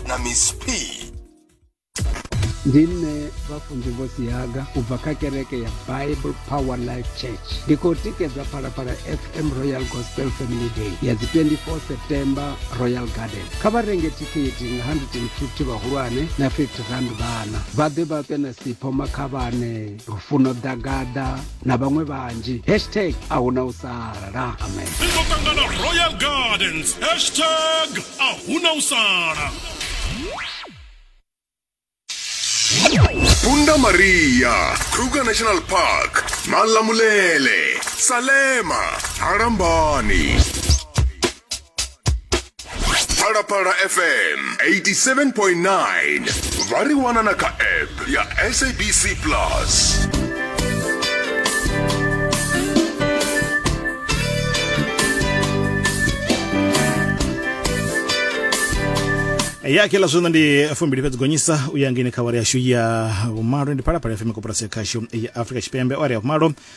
na miss p ndi nṋe vhafunzi vho sihaga u bva kha kereke ya bible power life church ndi khou tikedza phalaphala fm royal gospel family day ya dzi 24 september royal garden kha vha renge thikhithi nga 150 vhahulwane na 50 rand vhana vha ḓe vha ṱwe na sipho makhavhane lufuno ḓagaḓa na vhaṅwe vhanzhi hashtag a hu na u sala amen ri ḓo ṱangana royal gardens hashtag a hu na u sala Punda Maria, Kruger National Park, Malamulele, Salema, Harambani. phalaphala fm 87.9 vha ri wana na kha app ya sabc plus ya kila zwino ndi fumbili fhedzi gonyisa u ya ngeni kha awara yashu ya vhumalo ndi phalaphala fm koporasi ya khashu ya afrika tshipembe awara ya vhumalo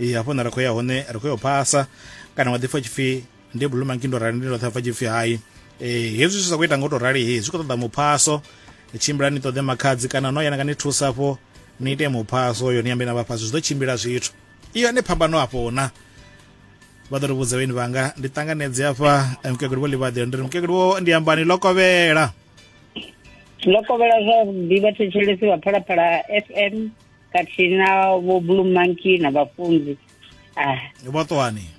ee hafho na ri khou ya hone ri khou yo phasa kana wa ḓi pfa tshipfi ndi blue monkey ndo rali ndi ndo ṱhapfa tshipfi hai ee hezwi zwi sa khou ita nga u tou rali he zwi khou ṱoḓa muphaso tshimbila ni ṱoḓe makhadzi kana no yana nga ni thusa afho ni ite muphaso yo ni ambe na vhafhasi zwi ḓo tshimbila zwithu iyo ane phambano hafho na vha ḓo ri vhudza vheni vhanga ndi ṱanganedze afha eh, mukegulu vho ḽivhaḓela ndi ri mukegulu wo ndi ambani ḽo kovhela ḽo kovhela zwa ḓivha thetshelesi vha phalaphala fm khathihi na vho blue monkey na vhafunzi ah. vho ṱwani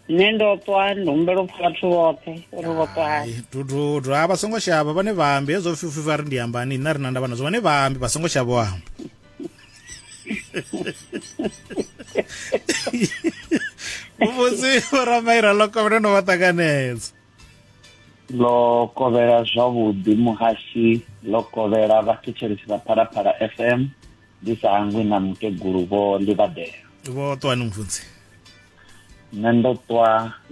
nṋe ndo ṱwa ndi humbela u pfa vhathu vhoṱhe uri vho ṱwani dududu a vha songo shavha vhane vhambi hezwo fifi vha ri ndi ambani nṋe ri na ndavha nazwo vhane vhambi vha songo shavha amba vhuvhusi vhoramairanloko vhane no vha ṱanganedza ḽo kovhela zwavhuḓi muhasi ḽo kovhela vhathetshelesi vha phalaphala fm ndi sa hangwi na mukegulu vho ḽivhadela vho ṱwani mufundzi nṋe ndo ṱwa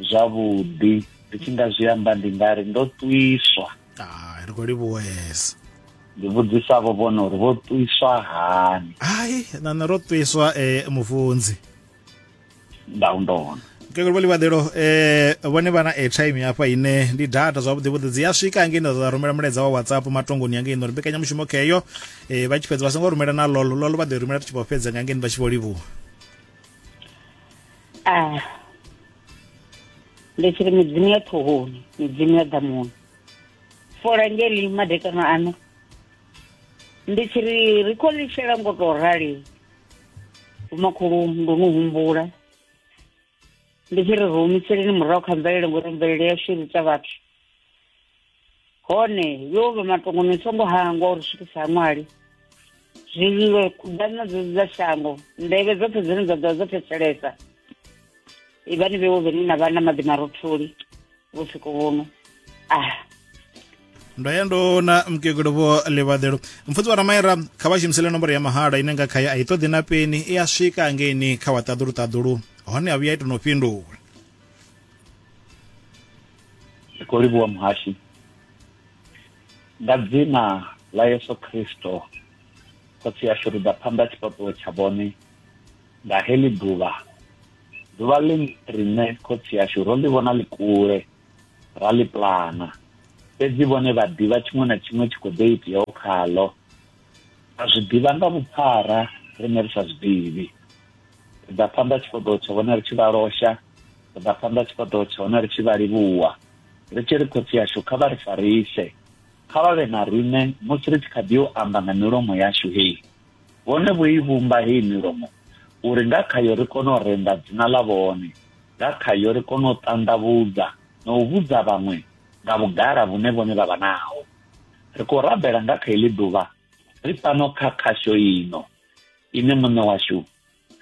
zwavhuḓi ndi tshi nga zwi amba ndi nga ri ndo ṱwiswa ah, ri khou livhuwesa ndi vhudzisa vho vhona uri vho ṱwiswa hani hai nana ro ṱwiswa um eh, mufunzi nda u ndona mukegulu vho ḽivhaḓelo um eh, vhone vha na airtime hafha ine ndi data zwavhuḓi vhuḓi dzi a swika hangei nda ḓa rumela mulaedza wa whatsapp matongoni yangei nori mbekanyamushumo kheyo um eh, vha tshi fhedza vha songo rumela na lolo lolo vha ḓo rumela ri tshi vho fhedza nga ngeni vha tshi vho livhuwa ah. ndi tshiri midzimu ya ṱhohoni midzimu ya ḓamuni fola ngeli madekano ano ndi tshiri ri khou lishela ngo tou rali vhomakhulu ndo no humbula ndi tshi ri ri humiseleni murahu kha mvelele ngori mvelele yashu i ita vhathu hone yo vha matongo ni songo hangwa uri swikisa haṅwali zwililo kuḓana dze dza shango ndevhe dzoṱhe dzine dza ḓovha dzo thetshelesa ivhani vhewo vhene na vha na maḓi marotholi vhusiku vhuno ah ndo ya ndo na mkegulu vho livhaḓelo mfudzi wa ramaira kha vha shumisele nomboro ya mahala ine nga khaye a i ṱoḓi na peni i a swika angeini kha wa ṱaḓulu ṱaḓulu hone a vhuya ito no fhindula ndi khou livhuwa muhashi nga dzina ḽa yesu kristo khotsi yashu ri ḓa phanḓa tshifhaṱuwo tsha vhone nga heḽi ḓuvha ḓuvha ḽi riṋe khotsi ashu ro ḽi vhona ḽi kule ra ḽi plana fhedzi vhone vha ḓivha tshiṅwe na tshiṅwe tshi khou ḓo iteaho khaḽo a zwi ḓivha nga vhuphara riṋe ri sa zwi ḓivhi ri ḓa phanḓa tshifhaṱuwo tsha vhone ri tshi vha losha ri ḓa phanḓa tshifhaṱuwo tsha hone ri tshi vha livhuwa ri tshi ri khotsi yashu kha vha ri farise kha vha vhe na riṋe musi ri tshi kha ḓi yo amba nga milomo yashu hei Vhone vho i vhumba heyi milomo uri nga khayo ri kone u renda dzina ḽa vhone, nga khayo ri kone u ṱanḓavhudza na u vhudza vhaṅwe nga vhugala vhune vhone vha vha naho. Ri khou rabela nga kha iḽi ḓuvha ri fhano kha khasho ino ine Muṋe washu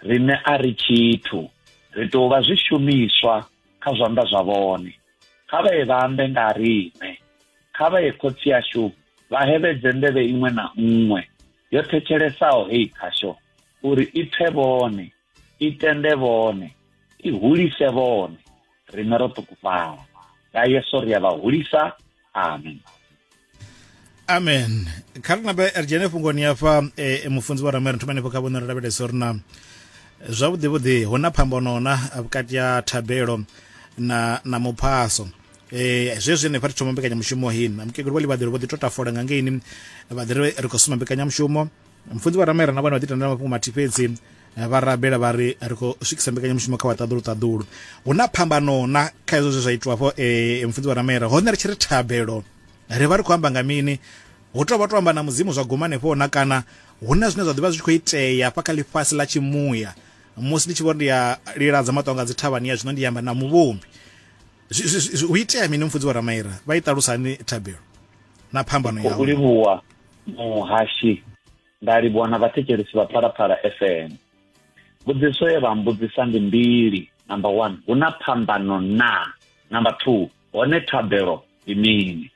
riṋe a ri tshithu, ri tou vha zwishumiswa kha zwanḓa zwa vhone. Kha vha ye vha ambe nga ha riṋe, kha vha ye Khotsi ashu vha hevhedze nḓevhe iṅwe na nṅwe. yo thetshelesaho heyi khasho uri i pfe vhone i tende vhone i hulise vhone rine ro ṱukufhala nga yesu ri a vha hulisa amen amen kha ri nabe ri dzhene fhungoni hafha e, e mufunzi wa ramere thoma henefho kha vhone ri lavhelesa uri na zwavhuḓivhuḓi hu na phambano na vhukati ha thabelo na na muphaso Eh, zwezwi henefha ri thoma mbekanyamushumo hini mukegulu vha ḽivhaḓelo vho ḓi to tafola nga ngeini vha ḓi ri ri khou suma mbekanyamushumo mfunzi vha ramaira na vhone vha ḓi tendela mafhungo mathihi fhedzi eh, vha rabela vha ri ri khou swikisa mbekanyamushumo kha vhaṱaḓulu ṱaḓulu hu na phambano na kha hezwo zwe zwa itiwa fho eh, mfunzi vha ramaira hone ri tshi ri thabelo ri vha ri khou amba nga mini hu tou vha to amba na mudzimu zwa guma hanefho na kana hu na zwine zwa ḓivha zwi tshi khou itea fha kha ḽifhasi ḽa tshimuya musi ndi tshi vho ndi ya liladza maṱonga dzi thavhani ya zwino ndi amba na muvhumbi hu itea mini mufudzi wa ramaira vha i ṱalusa hani thabelo na phambano ya u livhuwa muhashi nda livhuwa na vhathetshelisi vha phalaphala fm mbudziso ye vha mbudzisa ndi mbili number one hu na phambano na number two hone thabelo ndi mini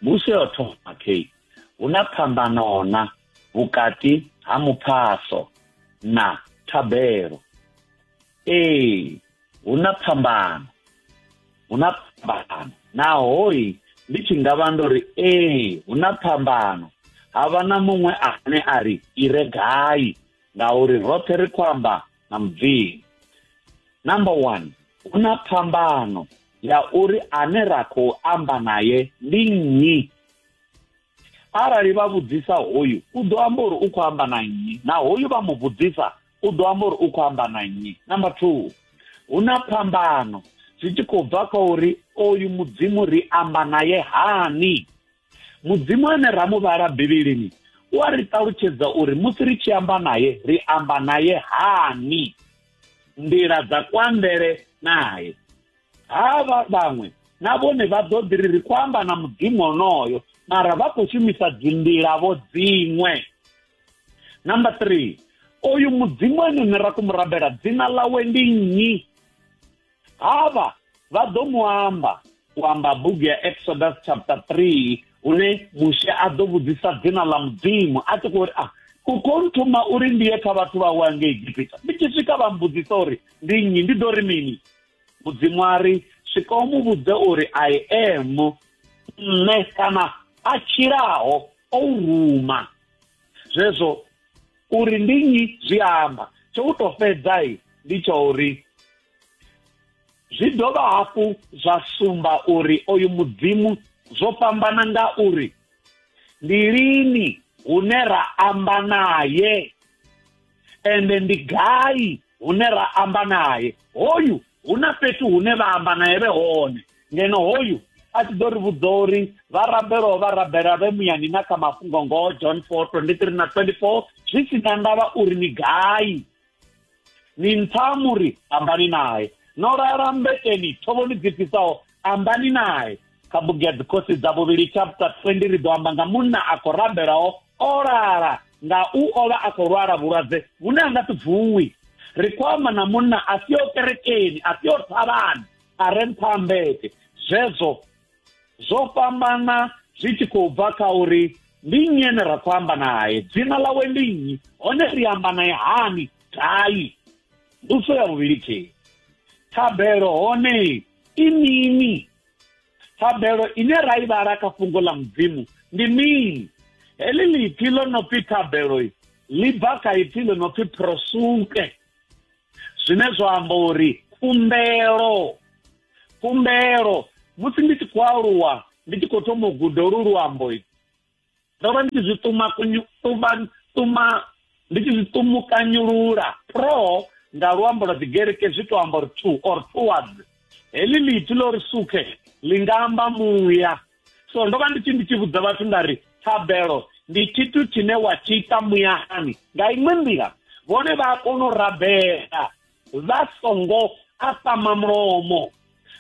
mbuso yo thoma kei hu na phambano na vhukati ha muphaso na thabelo ee hu na phambano hu na phambano nahoi ndi tshi nga vha ndo ri ee hu na phambano ha vha na muṅwe ane a ri i re gai ngauri roṱhe ri khou amba na mubvini number one hu na phambano ya uri ane ra khou amba naye ndi nnyi arali vha vhudzisa hoyu u ḓo amba uri u khou amba na nnyi na hoyu vha mu vhudzisa u ḓo amba uri u khou amba na nnyi number two hu na phambano zwi tshi khou bva kha uri oyu mudzimu ri amba naye hani mudzimu ane ra mu vhala bivhilini u a ri ṱalutshedza uri musi ri tshi amba naye ri amba naye hani nḓila dza kwambele naye havha vhaṅwe na vhone vha ḓo ḓi ri ri khou amba na mudzimu onoyo mara vha khou shumisa dzinḓilavo dziṅwe number three oyu mudzimu ene ne ra ku mu rabela dzina ḽawe ndi nnyi havha vha ḓo mu amba u amba bugu ya exodus chapter 3 une mushe a ḓo vhudzisa dzina ḽa mudzimu a tshi khou ri a ah, u khou nthuma uri ndi ye kha vhathu vhawe ange egipita ndi tshi swika vha mbudzisa uri ndi nnyi ndi ḓo ri mini mudzimu a ri swika u mu vhudze uri i am nṋe kana a tshilaho o u ruma zwezwo uri ndi nnyi zwi amba tsho u to fhedza i ndi tsha uri zwi dovha hafhu zwa sumba uri oyu mudzimu zwo fhambana nga uri ndi lini hune ra amba naye ende ndi gai hune ra amba naye hoyu hu na fhethu hune vha amba naye vhe hone ngeno hoyu a tshi ḓo ri vhudza uri vha rabelwa vha rabela vhe muyani na kha mafhungo ngoho john 4 23 na 24 zwi si na ndavha uri ni gai ni ntsha muri ambani naye no lala mbeteni thovhoni dzi fhisaho ambani naye kha bugu ya dzikhosi dza vhuvhili chapter 20 ri ḓo amba nga munna a khou rabelaho o lala nga u o vha a khou lwala vhulwadze vhune a nga si vuwi ri khou amba na munna a si o kerekeni a si o thavhani a re nṱha ha mbete zwezwo zwo fhambana zwi tshi khou bva kha uri ndi nnyi ene ra khou amba naye dzina ḽawe ndi nnyi hone ri amba naye hani gai nduso ya vhuvhili khei thabelo hone i mini thabelo ine ra i vhala kha fhungo ḽa mudzimu ndi mini heḽi ḽipfi ḽo no pfi thabelo ḽi bva kha ipfi ḽo no pfi prosuke zwine zwa amba uri khumbelo khumbelo musi ndi tshi khou aluwa ndi tshi khou thoma u guda olu luambo ndo vha ndi tshi zwi tuma kunyu tuma tuma ndi tshi zwi tumukanyulula pro nga luambo lwa dzigereke zwi to amba uri two or towards heḽi ḽithi ḽo ri sukhe ḽi nga amba muya so ndo vha ndi tshi ndi tshi vhudza vhathu nda ri thabelo ndi tshithu tshine wa tshi ita muyani nga iṅwe nḓila vhone vha a kona u rabela vha songo apama mulomo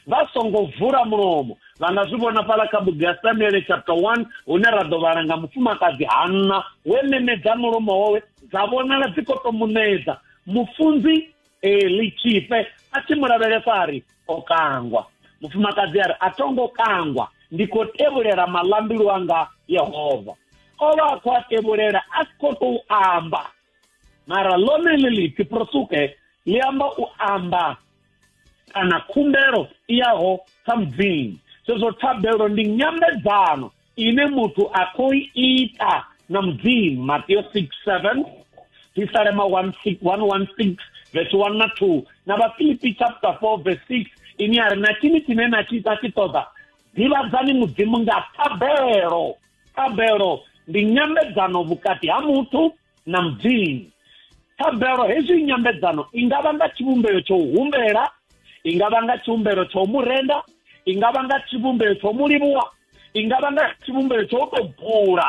vha songo vula mulomo vha nga zwi vhona fhala kha bugu ya samuele chapter 1 hune ra ḓo vhala nga mufumakadzi hanna we memedza mulomo wawe dza vhonala dzi khou to munedza mufunzi eli tshifhe a tshi mu lavhelesa a ri o kangwa mufumakadzi a ri a tongo kangwa ndi khou tevhulela malambilu anga yehova o vha a khou a tevhulela a si khou tou amba mara lone ḽi lipfi prosuke ḽi amba u amba kana khumbelo i yaho kha mudzimu zwezwo thabelo ndi nyambedzano ine muthu a khou ita na mudzimu mateo 6 7 tisalema 116 vhesi 1 na 2 na vhafilipi chapter 4 vhesi 6 ini a ri na tshini tshine na tshi ita tshi ṱoḓa ḓivhadzani mudzimu nga thabelo Thabelo ndi nyambedzano vhukati ha muthu na mudzimu thabelo hezwi nyambedzano i nga vha nga tshivhumbeo tsha u humbela i nga vha nga tshivhumbelo tsha u mu renda i nga vha nga tshivhumbeo tsha u mu livhuwa i nga vha nga tshivhumbeo tsha u tou bula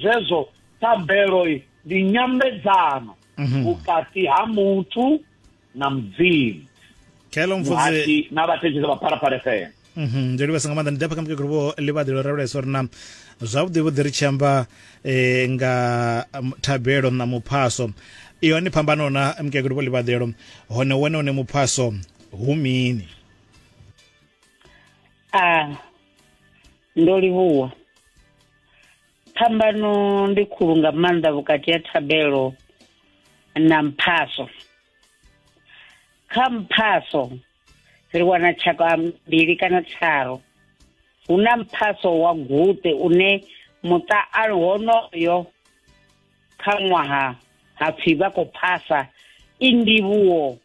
zwezwo thabelo ndi nyambedzano mhm. vhukati ha muthu na mudzimu khelo mfudzi muhati na vhathetshelesa vha phalaphala fm Mhm, ndo livhasa nga maanḓa ndi dapha kha mukegulu vho ḽivhaḓi ḽo rabulesa uri na zwavhuḓi vhuḓi ri tshi amba eh, nga um, thabelo na muphaso i hone phambano na mukegulu vho ḽivhaḓelo hone wone une muphaso hu mini a ndo livhuwa phambano ndi khulu nga maanḓa vhukati ha thabelo na mphaso kha mphaso ri wana tshaka mbili kana tharu hu na mphaso wa guṱe une muṱa a honoyo kha ṅwaha hapfi vha khou phasa i ndivhuwo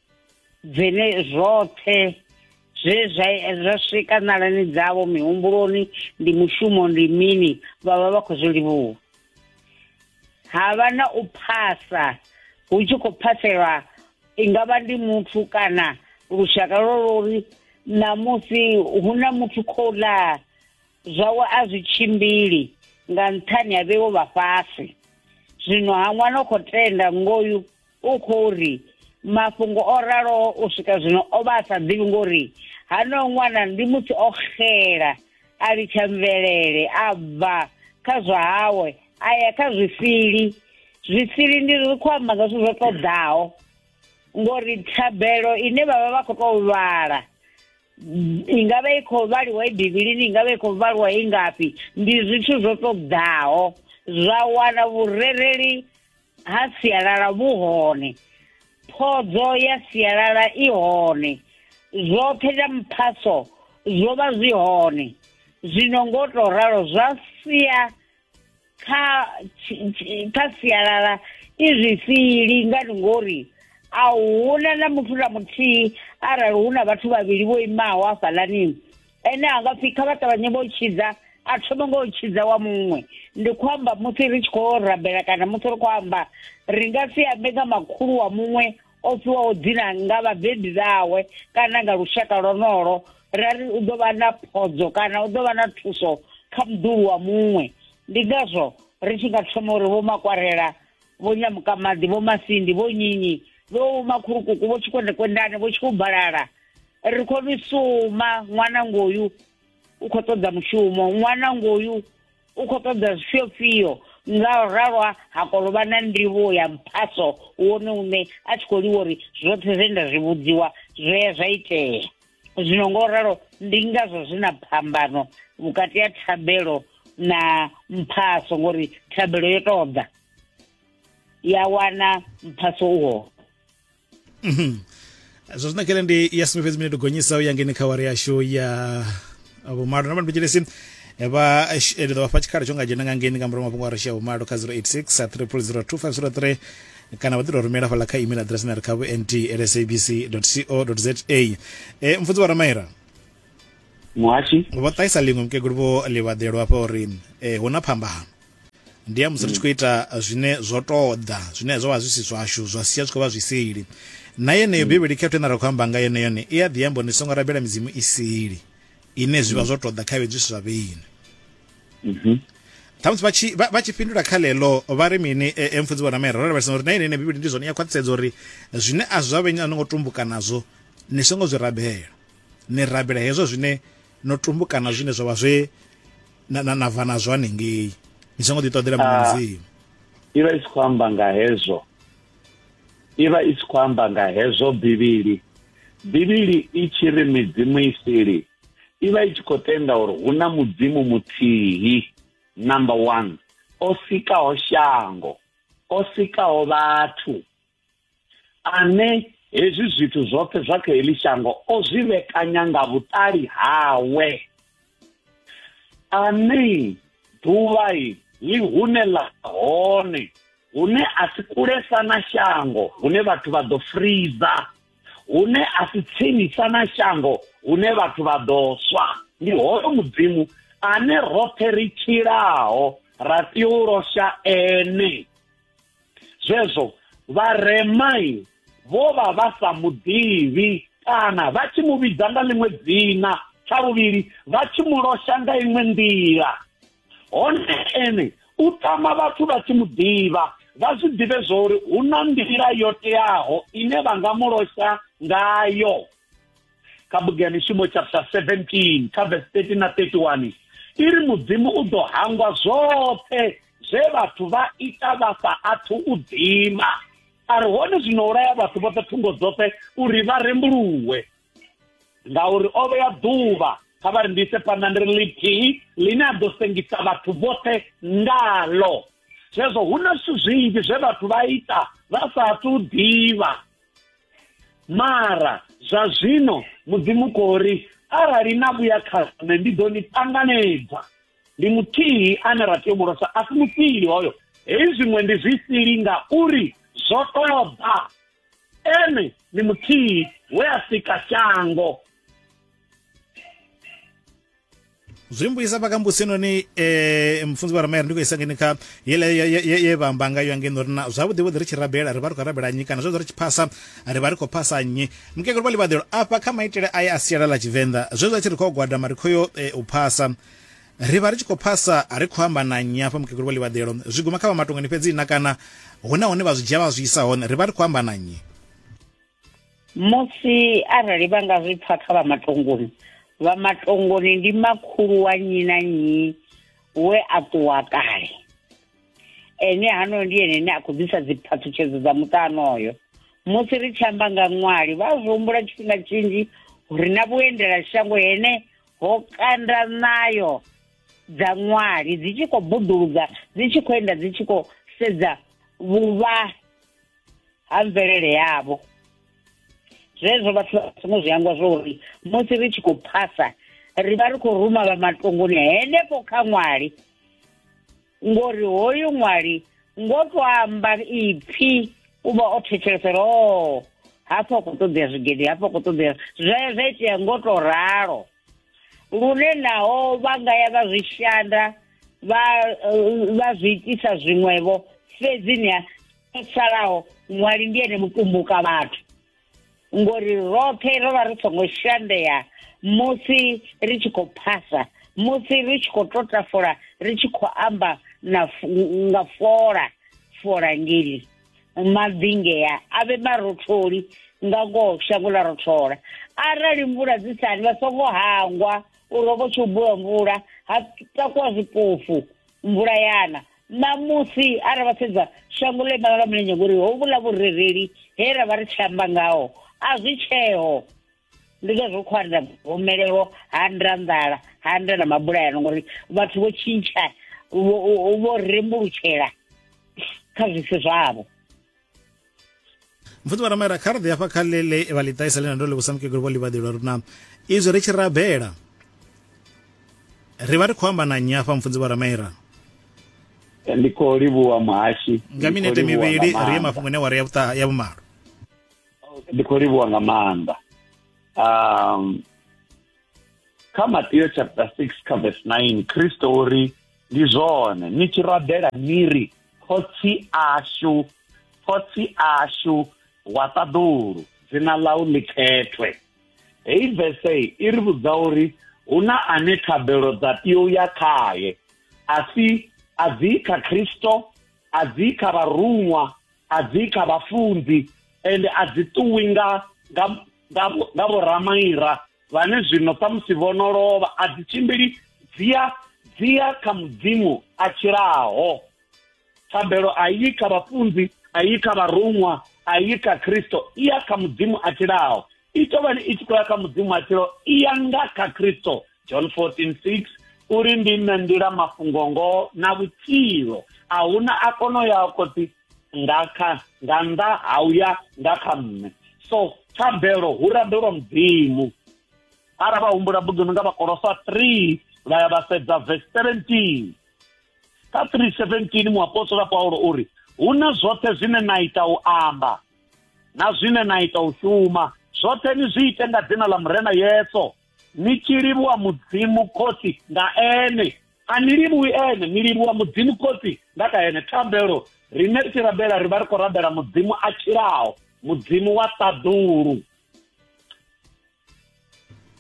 dzine zwoṱhe zwe zwa zwa swika nalani dzavho mihumbuloni ndi mushumo ndi mini vha vha vha khou zwi livhuwa ha vha na u phasa hu tshi khou phaselwa i nga vha ndi muthu kana lushaka lwo lori ṋamusi hu na muthu khou laa zwawe a zwi tshimbili nga nṱhani ha vheiwo vha fhasi zwino ha ṅwana u khou tenda ngoyu u khou ri mafhungo o raloho u swika zwino o vha a sa ḓivhi ngori hano ṅwana ndi muthu o xela a litsha mvelele a bva kha zwa hawe a ya kha zwisili zwisili ndi ri khou amba nga zwithu zwo ṱoḓaho ngori thabelo ine vhavha vha khou tou vhala i nga vha i khou vhaliwa i bivhilini i nga vha i khou vhaliwa i ngafhi ndi zwithu zwo ṱoḓaho zwa wana vhurereli ha sialala vhu hone phodzo ya sialala i hone zwoṱhe zwa mphaso zwo vha zwi hone zwino ngo to ralo zwa sia kha kha sialala i zwifhili ngani ngori a huna na muthu na muthihi arali hu na vhathu vhavhili vho imaho hafhaḽani ene a nga pfhi kha vha ṱavhanye vho tshidza a thoma ngo tshidza wa muṅwe ndi khou amba musi ri tshi khou rabela kana musi ri khou amba ri nga si ambe nga makhulu wa muṅwe o fhiwaho dzina nga vhabebi vhawe kana nga lushaka lwonolo ra ri u ḓo vha na phodzo kana u ḓo vha na thuso kha muḓulu wa muṅwe ndi ngazwo ri tshi nga thoma uri vho makwarela vho nyamukamaḓi vho masindi vho nyinyi vho makhulukuku vho tshikwendekwendane vho tshikubalala ri khou ni suma ṅwana ngoyu u khou ṱoḓa mushumo ṅwana ngoyu u khou ṱoḓa zwifhiofhio nga u ralwa ha kolovha na ndivho ya mphaso wone une a tshi khou liwa uri zwoṱhe zwe nda zwi vhudziwa zwo ya zwa itea zwino ngo ralo ndi ngazwo zwi na phambano vhukati ha thabelo na mphaso ngori thabelo yo tou ḓa ya wana mphaso uho mhm. zwo zwi nakele ndi ya sumbe fhedzi minete gonyisa u ya ngeni kha wari yashu ya vhumalo na mbandibejelesi eh, vha eh, eh, ndi ḓo vhafha tshikhala tsho nga dzhena nga ngeni nga murahu mafhungo a ri shia vhumalo kha 086 3002503 kana vha ḓi tou rumela fhala kha email address na ri kha vhnt lsabc co za e mfunzi wa ramaira muhashi vho ṱahisa ḽiṅwe mukegulu vho ḽivhaḓelo hafha uri um hu na phambano ndi ya musi ri tshi khou ita zwine zwo ṱoḓa zwine zwo vha zwi si zwashu zwa sia zwi khou vha zwi sili na yeneyo mm. bivhili khetho ine ra khou amba nga yone yone i a ḓi amba ni songo rabela midzimu i sili ine zwi vha mm. zwo ṱoḓa kha vhedzi zwa vheni mhm. ṱhamusi vha tshi fhindula kha ḽeḽo vha ri mini e, e mfudzi vhona maira ro lavhelesa uri na ine ine bivhili ndi zwone ya khwaṱhisedza uri zwine a zwa vhenyi a no ngo tumbuka nazwo ni songo zwi rabela ni rabela hezwo zwine no tumbukana zwine zwa vha zwe na na bva na zwane ngei ni songo ḓi ṱoḓela muṅwe ah, mudzimu i vha i si khou amba nga hezwo i vha i si khou amba nga hezwo bivhili bivhili i tshi ri midzimu i sili i vha i tshi khou tenda uri hu na mudzimu muthihi number one o sikaho shango o sikaho vhathu ane hezwi zwithu zwoṱhe zwa kha heḽi shango o zwi vhekanya nga vhuṱali hawe ane ḓuvha ḽi hune ḽa hone hune a si kulesa na shango hune vhathu vha ḓo friza hune a si tsinisa na shango hune vhathu vha ḓo swa ndi hoyo mudzimu ane roṱhe ri tshilaho ra tea u losha ene zwezwo vharemai vho vha vha sa muḓivhi kana vha tshi mu vhidza nga ḽiṅwe dzina tsha vhuvhili vha tshi mu losha nga iṅwe nḓila hone ene u tama vhathu vha tshi mu ḓivha vha zwi ḓivhe zwo uri hu na nḓila yo teaho ine vha nga mu losha ngayo kha bugu ya mishumo chapter 17 kha verse 13 na 31 i ri mudzimu u ḓo hangwa zwoṱhe zwe vhathu vha ita vha sa athu u dzima a ri hone zwino ulaya vhathu vhoṱhe thungo dzoṱhe uri vha rembuluwe ngauri o vhea ḓuvha kha vha rindise phanḓa ndi ri lithihi ḽine a ḓo sengisa vhathu vhoṱhe ngalo zwezwo hu na zwithu zwinzhi zwe vhathu vha ita vha sa athu u ḓivha mara zwa zwino mudzimu khou ri arali na vhuya kha nṋe ndi ḓo ni ṱanganedza ndi muthihi ane ra tea u mulosa a si mufhili hoyo hei zwiṅwe ndi zwi sili ngauri zwo ṱoḓa ene ndi muthihi we a sika shango zwi mbuyisa vha kambusi noni eh mfunzi wa ramaya ndi khou isa ngeni kha yele ye vha amba ngayo ngeno uri na zwavhuḓi vhuḓi ri tshi rabela ri vha ri khou rabela nnyi kana zwezwo ri tshi phasa ri vha ri khou phasa nnyi mukegulu vha ḽivhaḓelo afha kha maitele aye a sialala tshivenḓa zwezwo a tshi ri khou gwadama ri khou yo eh, u phasa ri vha ri tshi khou phasa a ri khou amba na nnyi afha mukegulu vha ḽivhaḓelo zwi guma kha vha matongani fhedzi na kana huna hune vha zwi dzhia vha zwi isa hone ri vha ri khou amba na nnyi musi arali vha nga zwi pfa kha vha matongoni vha matongoni ndi makhulu wa nyi na nyi we a ṱuwa kale ene hano ndi ene ne a khou ḓisa dziphathutshedzo dza muṱano oyo musi ri tshi amba nga ṅwali vha zwi humbula tshifhinga tshinzhi uri na vhuendela shango hene ho kanda nayo dza ṅwali dzi tshi khou buḓuludza dzi tshi khou enda dzi tshi khou sedza vhuvha ha mvelele yavho zwezwo vhathu vha songo zwi angwa zwo uri musi ri tshi khou phasa ri vha ri khou ruma vha matongoni henefho kha ṅwali ngori hoyu ṅwali ngo to amba ipfi u vha o thetshelesa uri o hafha u khou ṱoḓea zwigede hafha u khou ṱoḓea zwa zwa itea ngo to ralo lune naho vha nga ya vha zwi shanda vha eh, vha zwi itisa zwiṅwevho fhedzi ni a salaho muwali ndi ene mutumbuka vhathu ngori roṱhe ro vha ri songo shandea musi ri tshi khou phasa musi ri tshi khou tota fola ri tshi khou amba na nga fola fola ngeli mabvingea a vhe marotholi nga ngoho shango ḽa rothola arali mvula dzi sani vha songo hangwa uri ho vho tshi u bula mvula ha takuwa zwipofu mvula yana ṋamusi ara vha sedza shango ḽo imana lwa mulenzhe ngori ho vhula vhurereli he ra vha ri tshi amba ngaho a zwi tsheo ndi ngazwo khou anda gomelelo ha nda nḓala ha nda na mabulayano ngori vhathu vho tshintsha vho rembulutshela kha zwisi zwavho mfuti vha ramaira kha rḓi hafha kha lele vha ḽi ṱaisa ḽe na ndo livhusa mukegulu vho ḽivhaḓelwa ri na izwi ri tshi rabela ri vha ri khou amba na nnyi hafha mfunzi vha ramaira ndi khou livhuwa muhashi nga minete mivhili ri ye mafhungo ane wa ri ya vhumalo ndi khou livhuwa nga maanḓa um kha Matthew chapter 6 kha verse 9 Kristo uri ndi zwone ni tshi rabela ni ri khotsi ashu khotsi ashu wa ṱaḓulu dzina ḽau ḽi khethwe heyi vese i ri vhudza uri hu na ane thabelo dza tea u ya khaye a si a dzi kha khristo a dzi kha vharuṅwa a dzi kha vhafunzi ende a dzi ṱuwi nga nga nga vhoramaira vhane zwino samusi vho no lovha a dzi tshimbili dzia dzia kha mudzimu a tshilaho thambelo a yi kha vhafunzi a yi kha vharuṅwa a yi kha khristo i ya kha mudzimu a tshilaho i tovhani i tshi khou ya kha mudzimu a tshilaho i ya nga kha khristo john 14 6 uri ndi nṋe nḓila mafhungo ngoho na vhutshilo a huna a kono ya khotsi nga kha nga nnḓa ha uya nga kha nṋe so thabelo hu rabelwa mudzimu ara vha humbula buguni nga vhakolosa 3 vha ya vha sedza verse 17 kha 317 muapostola paulo o ri hu na zwoṱhe zwine na ita u amba na zwine na ita u shuma zwoṱhe ni zwi ite nga dzina ḽa murena yeso ni tshi livhuwa mudzimu khotsi nga ene a ni livhuwi ene ni livhuwa mudzimu khotsi nga kha ene thabelo rine ri tshi rabela ri vha ri khou rabela mudzimu a tshilaho mudzimu wa ṱaḓulu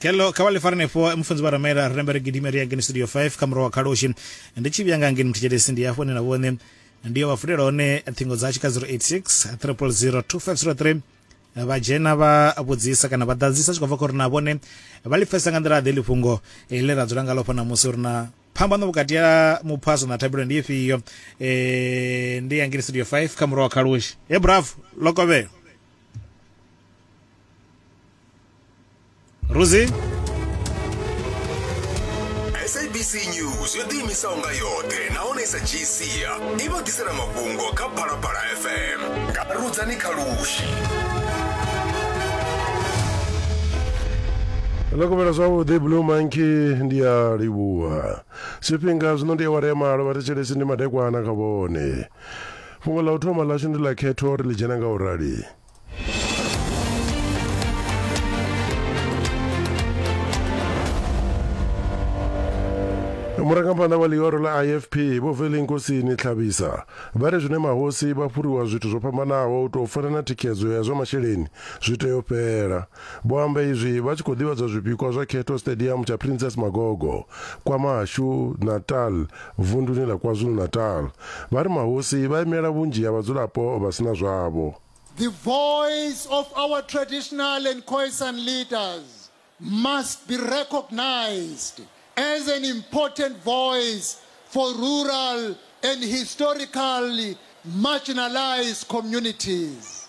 kello kha vha ḽi fara nefho mufunzi vha ramela ri rambe ri gidime ri ya ngeni studio 5 kha murahu wa khaloshi ndi tshi vhuya nga ngeni muthetshelesi ndi hafho ni na vhone ndi yo vha fulela hone ṱhingo dzashu kha 086 300 2503 vha dzhena vha vhudzisa kana vha ḓadzisa tshi khou bva kha uri na vhone vha ḽi pfesa nga nḓila ḓe ḽifhungo eh, ḽe ra dzula nga lofha namusi uri na phambano vhukati ya muphaso na thabelo ndi ifhio eh, ndi ya ngiri studio 5 kha muraho khalushi he bravo lokovhelo Rosie? sabc news yo ḓiimisaho nga yoṱhe nahone i sa dzhii sia i vha ḓisela mafhungo kha phalaphala fm nga rudzani kha lushi ḽo kovhela zwavhuḓi blue monkey ndi a livhuwa zwifhinga zwino ndi awara ya malo vha thetshelesi ndi madekwana kha vhone fhungo ḽa u thoma ḽashu ndi ḽa khetho ri ḽi dzhena nga u rali murangaphanḓa wa ḽihoro ḽa ifp vho veli nkosini tlhabisa vha ri zwine mahosi vha fhuriwa zwithu zwo fhambanaho u tou fana na thikhedzo ya zwa masheleni zwi tea u fhela Vho amba izwi vha tshi khou ḓivhadzwa zwipikwa zwa khetho Stadium tsha Princess Magogo, KwaMashu, Natal, vunduni ḽa KwaZulu-Natal. Vha ri mahosi vha imela vhunzhi ha vhadzulapo vha si na zwavho. The voice of our traditional and Khoisan leaders must be recognised as an important voice for rural and historically marginalised communities.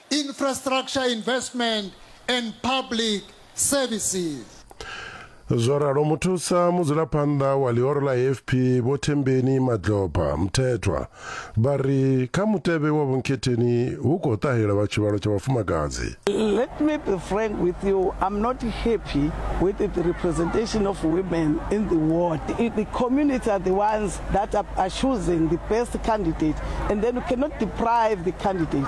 Infrastructure Investment and Public Services. Zwo ralo muthusa mudzulaphanḓa wa ḽihoro ḽa AFP Vho Thembeni Madlopa Mthethwa vha ri kha mutevhe wa vhunkhetheni hu khou ṱahela vha tshivhalo tsha vhafumakadzi. Let me be frank with you, I'm not happy with the representation of women in the ward. The community are the ones that are choosing the best candidate and then you cannot deprive the candidate.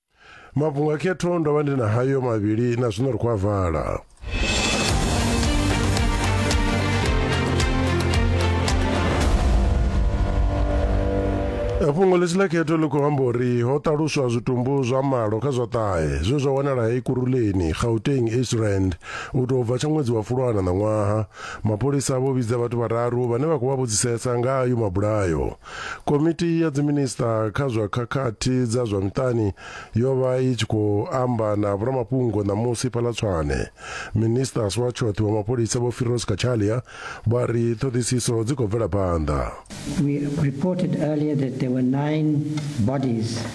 mafhungo a khetho ndo vha ndi na hayo mavhili na zwino ri khou a vala fhungo ḽitshi ḽa khetho ḽi khou amba uri ho ṱaluswa zwitumbu zwa malo kha zwa ṱahe zwe zwa wanala hei kuruleni gauteng eastrand u tou bva tsha ṅwedzi wa fulwana ṋaṅwaha mapholisa vho vhidza vhathu vhararu vhane vha khou vha vhudzisesa nga ayo mabulayo Komiti ya Dziminisiṱa kha zwa Khakhathi dza zwa Miṱani yo vha i tshi khou amba na vhoramafhungo ṋamusi fhaḽa Tshwane. Minisiṱasi wa Tshoṱhe wa Mapholisa Vho Firoz Cachalia vha ri ṱhoḓisiso dzi khou bvela phanḓa. We reported earlier that there were nine bodies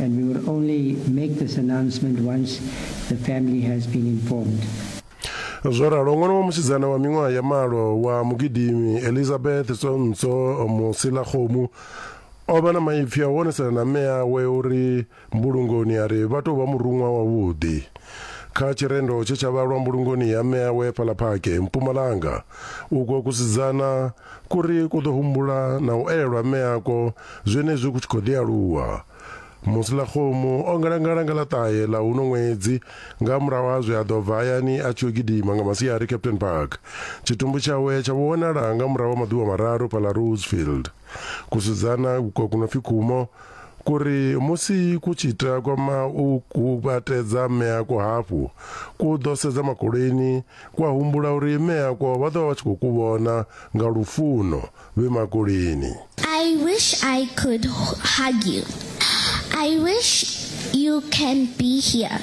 and we will only make this announcement once the family has been informed. zwo ralo ṅwana wa musidzana wa miṅwaha ya malo wa mugidimi elizabeth tsonso musilakgomu o vha na maipfi a u onesela na mme awe uri mbulungoni a ri vha tou vha muruṅwa wavhuḓi kha tshirendo tshe tsha vhalwa mbulungoni ya mme awe fhaḽa phake mpumalanga uko kusidzana Kuri ku ḓo humbula na u elwa mme akwo zwenezwi ku tshi khou ḓi aluwa. Musilakgomu o ngalangala nga ḽa ṱahe ḽa uno ṅwedzi nga murahu ha zwe a ḓo bva hayani a tshi yo gidima nga masiari Captain Park. Tshitumbu tshawe tsha vho wanala nga murahu ha maḓuvha mararu fhaḽa Rosefield. Kusidzana kwa ku no pfi Khumo ku ri musi ku tshi takwama u kuvhatedza mme akwo hafhu, ku ḓo sedza makoleni Ku a humbula uri Mme akwo vha ḓo vha vha tshi khou ku vhona nga lufuno vhe makulini. I wish I could hug you, I wish you can be here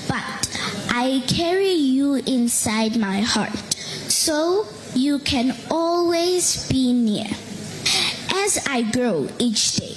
but I carry you inside my heart so you can always be near as I grow each day.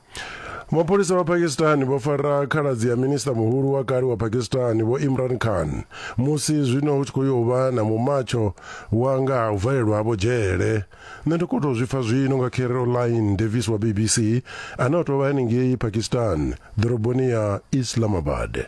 Mapholisa vha Pakistan vho fara khaladzi ya minista muhulu wa kale wa Pakistan vho Imran Khan musi zwino hu tshi khou yo vha na mumatsho wa nga ha u valelwa havho dzhele. Nṋe ndi khou tou zwi pfa zwino nga Caroline Davis wa BBC ane o tou vha henengei Pakistan ḓoroboni ya Islamabad.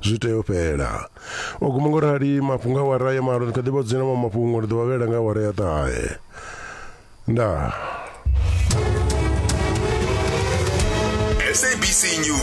zwi tea u fhela o guma ngo rali mafhungo a wara ya malo ni kha ḓi vha dzina ma mafhungo ri ḓo vha vhela nga wara ya ṱahe ndaa SABC News